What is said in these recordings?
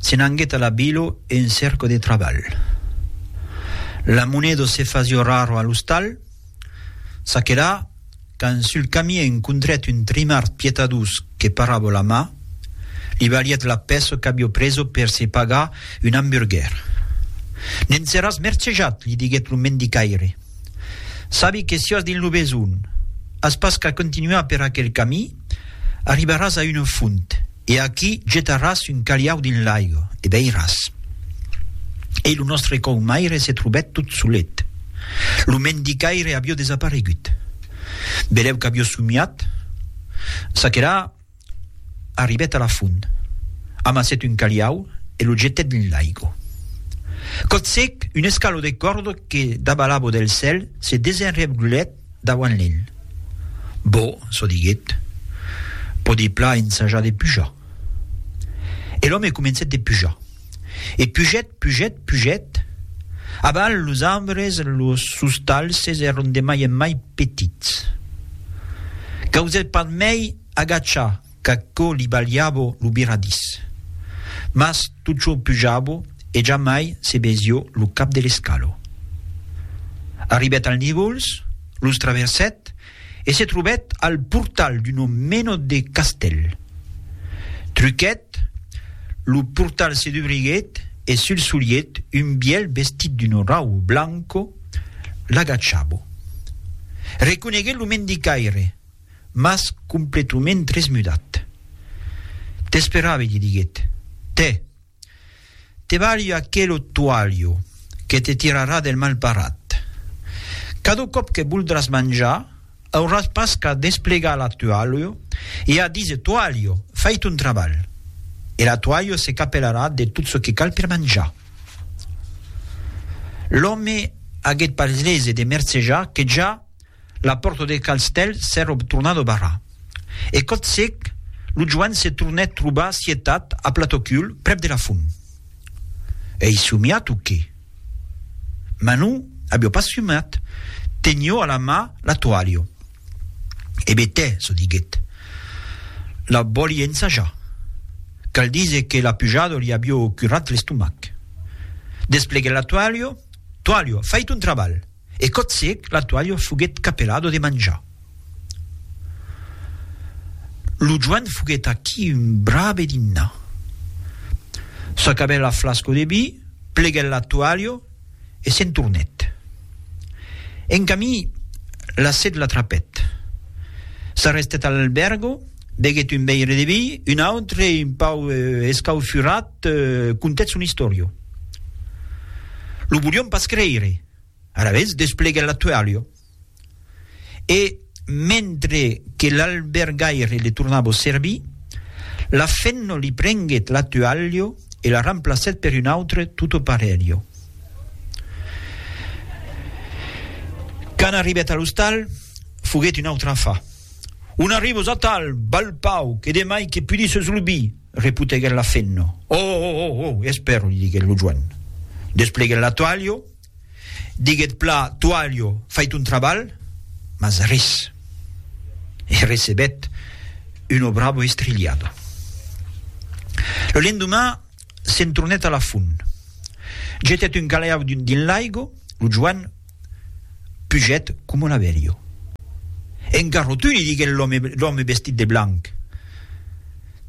Se n'anguèt a la Bilo en cerco de trabalh. La Monedo se fasió raro a l'ostal. Ça que là, quand sul camí encontrèt un trimard pietadós que parràvo la mà, li valièt la pèça qu'avió preso per se pagar un amburguèr. Ne'n seràs mercejat, li diguèt lo mendicaire. Sabi que siás dins lo besonh, as pas qu'a continuar per aquel camí, arribaràs a una font, e aquí getaràs un calhau dins l'aiga, e beiràs. E lo nòstre caumaire se trobèt tot solet. Lo mendicaire avió desaparegut. Belèu qu'avió somiat, çaquelà Arribèt a la font, amassèt un caliau e lo jetèt dins l'aigo. Cotsèc, un escalò de còrda que daba l'abo del cèl se desenrevglhèt dauant l'el. Bo, çò diguèt, pòdi plan ensajar de pujar. E l'òme comencèt de pujar. E pugèt, pugèt, pugèt, abans los arbres, los sustalhs èron de mai en mai petits. Causèt pas mai. Agacha qu'aquò li balhava lo biradís. Mas Tuchò pujava e jamai se besió lo cap de l'escalo. Arribèt al Nigols, los traversèt e se trobèt al portal d'una mena de castèl. Truquèt, lo portal se dubriguèt e sul solièt un bièlh vestit d'una rauba blanca l'agachava. Reconeguèt lo mendicaire. mas completument tresmudat. T'esperavi, li diguèt. Tè! Te balho aquelo toalho que te tirarà del malparat. Cada còp que voldràs manjar, auràs pas qu'a desplegar la toalho e a díser toalho, fai ton trabalh! E la toalho se capelarà de tot çò que cal per manjar. L'òme aguèt pas lese de mercejar que ja La pòrta de Calstèl s'èra tornada barrar. E còth sec, lo Joan se tornèt trobar sietat a Platocul, prèp de la font. Ei somiat o qué? Mas non, avió pas somiat, tenió a la mà la toalha. E betè, se diguèt, la vòli ensajar. Cal díser que la pujada li avió curat l'estomac. Despleguèt la toalha, Toalha, fai ton trabalh! e cotzièc la toalha foguèt capelado de manjar. Lo joan foguèt aquí un brave dinnar. S'acabèt la flasco de vi, pleguèt la toalha e se'n tornèt. En camí, la set l'atrapèt. S'arrestèt a l'albèrgo, beguèt un veire de vi, un autre, un pauc escaufurat, Te contètz una istòria. Lo volion pas creire. Alavetz despleguèt la toalha e, mentre que l'albergaire le tornava au servir, la femna li prenguèt la toalha e la remplacèt per una autra tota parelha. Quand arribèt a l'ostal, foguèt una autra afa. On arriba, Zatal! Balh pauc! E demai que pudisses lo vi! Reputeguèt la femna. Ò, ò, ò, ò, es per, li diguèt lo joen. Despleguèt la toalha, diguèt pla toalha, fai ton trabalh, mas res. E recebèt una brava estrilhada. Lo lendeman s'entrunèt a la font. Jetèt un calèau dins l'aiga, lo joen. Puget coma un averio. En garrotu li diguèt l'òme vestit de blanc.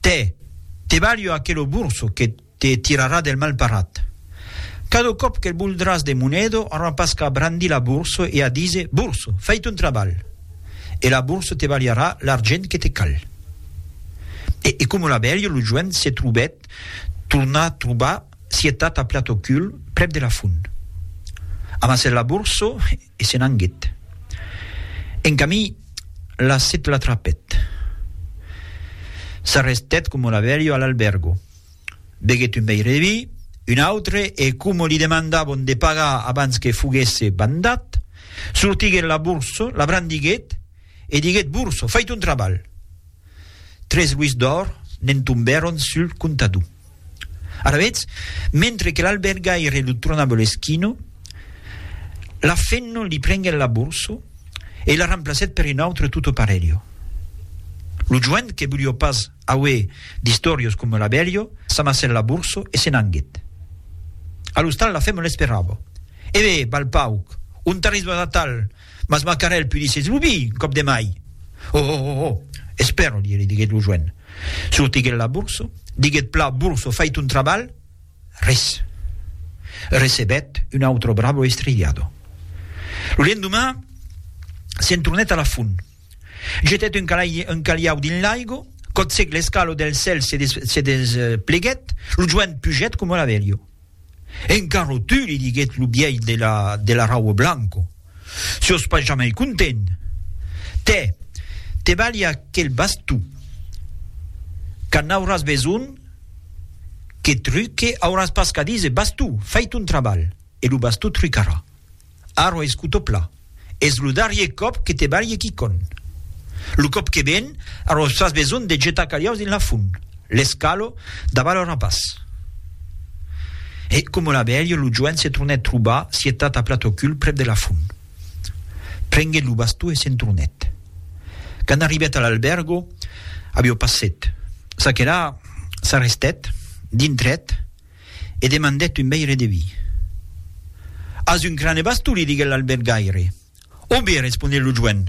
Tè, te balho aquelo burso que te tirarà del malparat. Cada còp que'l boldràs de monedo aurà pas qu'a brandir la burso e a díser, Burso, fai ton trabalh! E la burso te balharà l'argent que te cal. E coma un averio lo joen se trobèt tornar trobar Sietat a plat au cul, prèp de la font. Amassèt la borsa e se n'anguèt. En camin, la set l'atrapèt. S'arrestèt coma una vèlha a l'albèrgo. Beguèt un veire de vi, un autre e, coma li demandavon de pagar abans que foguèsse bandat, sortiguèt la borsa, la brandiguèt e diguèt, Borsa, fai ton trabalh! Tres luis d'òr ne'n tombèron sul comptador. Alavetz, mentre que l'albergaire lo tronava l'esquino, la Fenno li prenguèt la borso e la remplacèt per un autre tutto parelho. Lo joent que volió pas auer d'istòrios coma l'abelho s'amassèt la borso e se n'anguèt. A l'ostal la Fenno l'esperava. Eve, balpauc, ont arrisvas atal? Mas Macarèl pudissetz lo vi, un còp de mai! Ho, ho, ho, ho! Espèro, li diguèt lo joen. Sortiguèt la borsa, diguèt plan, Borsa, fai ton trabalh! Res. Recebèt un autre bravo estrigliado. Lo lendoman, se'n tornèt a la font. Jetèt un caliau dins l'aigo, cotzèc l'escalo del cèl se despleguèt, lo joen pugèt coma la velha. Encaro tu, li diguèt lo bièlh de la raua blanco, siós pas jamai content. Tè, te balhi aquel bastó. Quand n'auràs besonh que truque, auràs pas qu'a díser, bastó, fai ton trabalh e lo bastó trucarà. Arro escuto pla. Es lo darrier còp que te balhe quicò'n. Lo còp que ven, arro fas besonh de getar caliaus dins la font. Les calo davant lo rapàs. E, coma la velha, lo joen se tornèt trobar sietat a plat au cul prèp de la font. Prenguèt lo bastó e se'n tornèt. Quand arribèt a l'albèrgo, aviá passèt. Ça que la, s'arrestèt, dintrèt. e demandèt un veire de vi. As un crane bastou, li diguèt l'albergaire. O be, responec lo joen.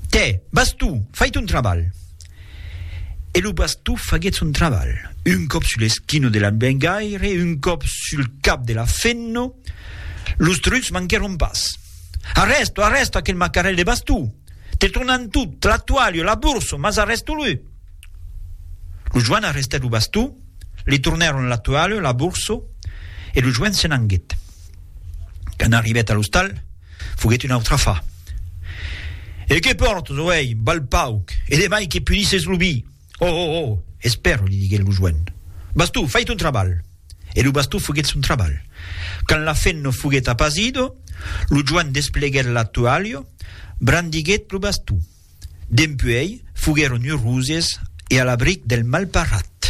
Tè, bastou, fai ton trabalh. E lo bastou faguèt son trabalh, un còp sul esquino de l'albergaire, un còp sul cap de la fenno. Los trucs manquèron pas. Arrèsto, arrèsto aquel macarèl de bastou! Te tornan tot, la toalha, la borsa, mas arrèsto-lo! Lo joan arrestèt lo bastó, li tornèron la toalha, la borsa, e lo joan se n'anguèt. Quand arribèt a l'ostal, foguèt una autra fa. E que pòrtes, o ei, val pauc, e de mai que punisses lo vi! Oh, oh, oh! Espèra, li diguèt lo joan. Bastó, fai ton trabalh! E lo bastó foguèt son trabalh. Quand la fenna foguèt apasida, lo joan despleguèt la toalha, brandiguèt lo bastó. Dempuèi, foguèron uroses e a l'abric del malparat.